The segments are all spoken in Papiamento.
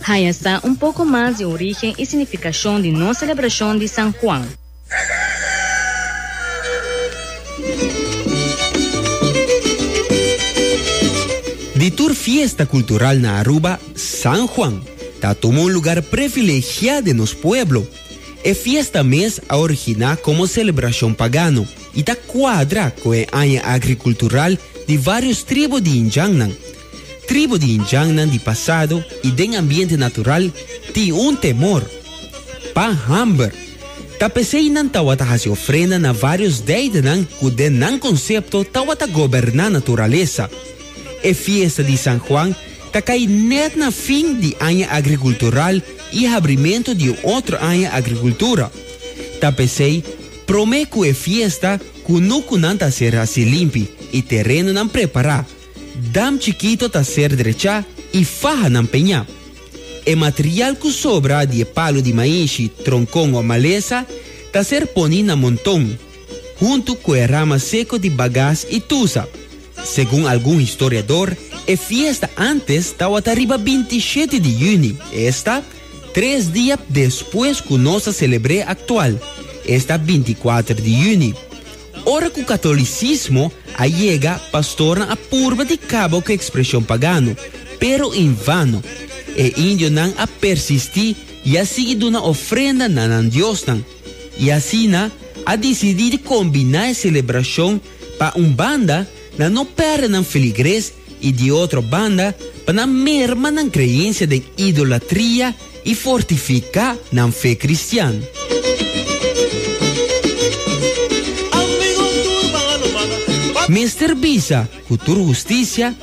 Haya sa un poco mas di origen y significacion di nos celebracion di San Juan. Di tur fiesta cultural na Aruba, San Juan ta tuma un lugar privilegiá den nos pueblo. E fiesta mes a originá como celebracion pagano y ta cuadra cu e aña agricultural di varios tribu di Indiannan. Tribu di Indiannan di pasado i den ambiente natural tin un temor pa hamber. Ta p'esei nan tawata hasi ofrenda na vários deidanan ku den nan konsepto tawata goberná naturalesa. E fiesta di San Juan ta kai nèt na fin di aña agrikultural i habrimentu di un otro aña agrikultura. Ta p'esei promé ku e fiesta ku nukunan ta será silimpi i terenonan prepará. Dam chikito ta ser drechá i faha nan peñá. E material ku sobra di e palu di mainshi, tronkon o malesa ta ser poní na monton, huntu ku e rama seko di bagas i tusa. Segun algun historiador, e fiesta ántes tawata riba binti i shete di yüni, esta, tres dia despues ku nos ta selebr'é aktual, esta binti i kuater di yüni. Ora ku katolisismo a yega, pastornan a purba di kaba ku ekspreshon pagano, pero en vano. E indionan a persistí i a sigui duna ofrenda na nan diosnan, i asina a disidí di kombiná e selebrashon pa un banda na no pèrdè nan feligres, I di otro banda, pa nan merma nan kreensia den idolatria i fortifiká nan fe kristian. Mester bisa ku tur hustisia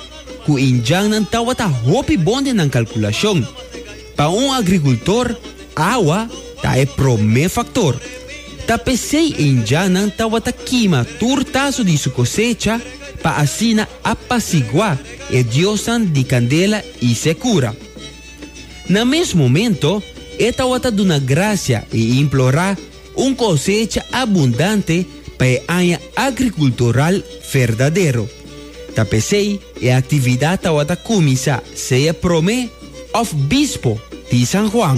ku indjannan tawata hopi bon den nan kalkulashon. Pa un agrikultor, awa ta e promé faktor. Ta p'esei indianan tabata kima tur taso di su kosecha pa asina apasiguá e diosnan di kandela i sekura. Na mes momento, e tabata duna grasia i implorá Un cosecha abundante pa e aña agricultural verdadero. Ta pesey e actividad tawata cuminsa sea prome of bispo di San Juan.